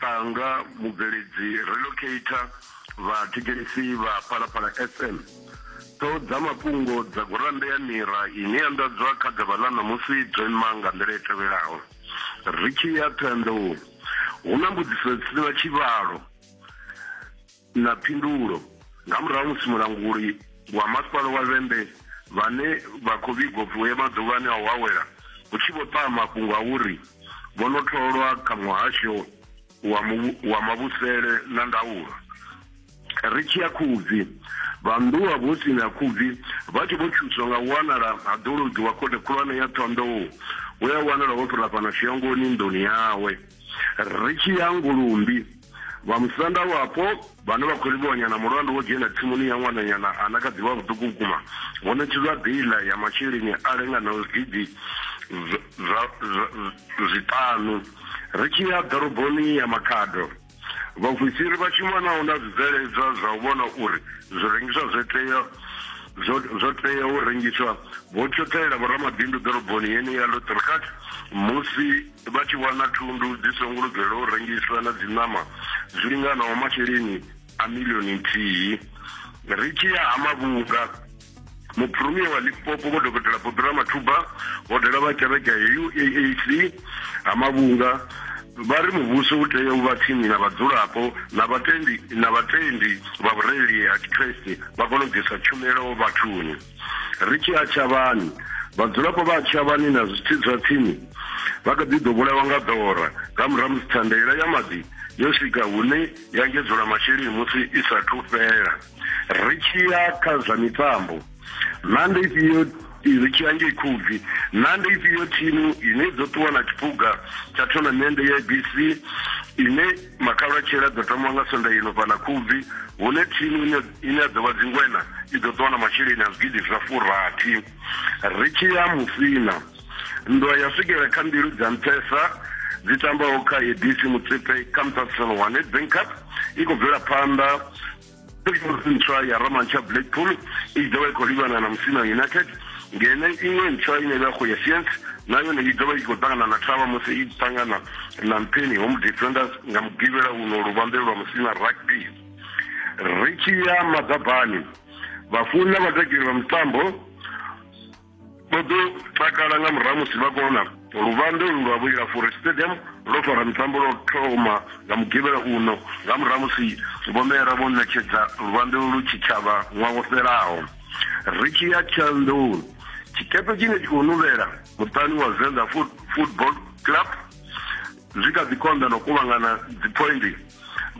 Tanga, mubveledzi, relocator, vha thetshelesi vha Phalaphala FM. Ṱhoho dza mafhungo dza gurannda ya Mira ine ya nḓadzwa kha ḓuvha ḽa ṋamusi dzo ima nga nḓila i tevhelaho. Ri tshi ya Ṱhohoyanḓou, hu na mbudziso dzi si na tshivhalo. Na phindulo nga murahu ha musi mulanguli wa Masipala wa Vhembe vhane vha khou vhigwa u pfi vho ya maḓuvhani a u awela hu tshi vho ṱaha mafhungo a uri vho no tholwa kha muhasho wa wa mavhusele na ndaulo. Ri tshi ya Khubvi, vha nnḓu wa vhuhosini ha Khubvi vha tshi vho thuswa nga u wanala ha ḓologi wa Khothe Khulwane ya Ṱhohoyandou we a wanala ho fhira fhano Shiyangoni nḓuni yawe. Ri tshi ya Ngulumbi, vha musanda wapo vhane vha khou livhuwanya na mulandu wo dzhena tsimuni ya ṅwananyana a na kha ḓi vha vhuṱuku vhukuma vho ṋetshedzwa beiḽa ya masheleni a linganaho zwigidi zwa zwiṱanu. Ri tshi ya ḓoroboni ya Makhado, vhaofisiri vha shumanaho na zwibveledzwa zwa u vhona uri zwirengiswa zwo tea zwo zwo tea u rengiswa vho tshoṱhelela vhoramabindu ḓoroboni yeneyi ya Lothrichard musi Vha tshi wana thundu dzi songo lugelwa u rengiswa na dziṋama zwi linganaho masheleni a milioni nthihi. Ri tshi ya ha Mavhunga, Muphuromia wa Limpopo Vho Dokotela Bobby Ramathuba vho dovha vha kereke ya UAAC ha Mavhunga vha ri muvhuso u tea u vha tsini na vhadzulapo na vhatendi na vhatendi vha vhurereli ha Tshikriste vha kone u ḓisa tshumelo vhathuni. Ri tshi a Tshavhani, vhadzulapo vha a Tshavhani na zwitsi zwa tsini vha kha ḓi ḓo vhulaiwa nga ḓora nga murahu musi thandela ya maḓi yo swika hune ya engedzula masheleni musi i sa thu fhela. Ri tshi ya kha zwa mitambo, na ndi ifhio ri tshi ya ngei Khubvi, na ndi ifhio thimu ine dzo ṱuwa na tshiphuga tsha thonamende ya ABC ine Makhalatshela ḓo thoma nga sonda ino fhaḽa Khubvi hune thimu ine ine ya ḓo vha dzingwena i ḓo ṱuwa na masheleni a zwigidi zwa furathi. Ri tshi ya Musina, nndwa ya swikela kha mbilu dza nṱhesa dzi tambaho kha Edisi Motsepe kha Mthathisano wa Nedbank Cup i khou bvela phanḓa. Pictures ntswa ya Romancha Blackpool i ḓo vha i khou livhana na Musina United ngeno iṅwe ntswa ine vha khou ya Science na yone i ḓo vha i khou ṱangana na Thavha musi i ṱangana na Mpheni Home Defenders nga mugivhela uno luvhanḓe lwa Musina Rugby ri tshi ya maḓabani vhafuni na vhatakeli vha mitambo vho ḓo takala nga murahu musi vha kona luvambe ulu lwa vhulila furi stadium lwo fara mitambo lwo thoma nga mugivhela uno nga murahu musi vhomera vho ṋetshedza luvambe ulu tshitshavha ṅwaha wo fhelaho ri tshi ya tshandoni tshikepe tshine tshi khou nuvhela muṱani wa venḓa football club Zwi kha ḓi konḓa na u kuvhangana dziphoindi.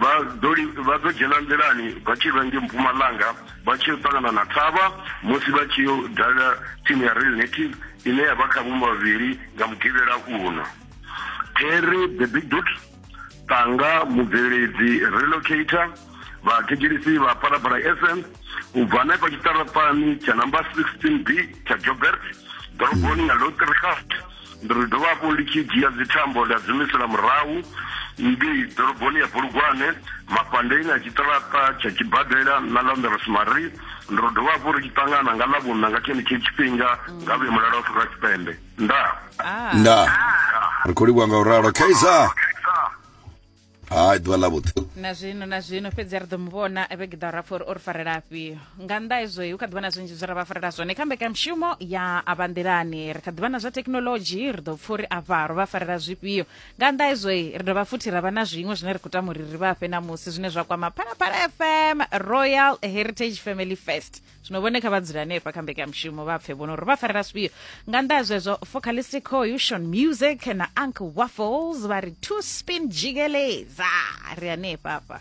Vha ḓo li, vha ḓo dzhena nḓilani vha tshi vha nge mpumalanga vha tshi yo ṱangana na thavha musi vha tshi yo dalela thimu ya Real Native ine ya vha kha vhuma vhavhili nga Mugivhela uno. Terry the Big Boot Tanga, mubveledzi, relocator, vhathetshelisi vha Phalaphala FM u bva hanefha tshiṱaraṱani tsha number 16B tsha Joburg ḓoroboni ya Loutherhut. ndi ri dovha hafhu ndi tshi dzhia dzithambo nda dzumisela murahu ngei ḓoroboni ya bulugwane mafhandeni a tshiṱaraṱa tsha tshibadela na ḽa nḓerosmarie ndi ri dovha hafhu ri tshi ṱangana nga ḽa vhunna nga tshenetshi tshifhinga nga vhuye mulalo wa afrika tshipembe nda nda ri khou livhuwa nga u ralo kaizer hai ḓuvha ḽa vhuḓi na zwino na zwino fhedzi ri ḓo mu vhona vhege ḓa ra pfa uri o ri farela afhio nga nnḓa hezwo hu kha ḓivha na zwinzhi zwe ra vha farela zwone kha mbekanyamushumo ya avha nḓilani ri kha ḓivha na zwa thekhinolodzhi ri ḓo pfa uri afha ro vha farela zwifhio nga nnḓa hezwo ri dovha futhi ra vha na zwiṅwe zwine ri khou tama uri ri vha fhe na musi zwine zwa kwama phalaphala fm royal heritage family fest zwino vhone kha vha dzule hanefha kha mbekanyamushumo vha pfe vhono uri vha farela zwifhio nga nnḓa ha zwezwo focalistic cohution music na uncle waffles vha ri two spin jigeleza ri hanefha hafha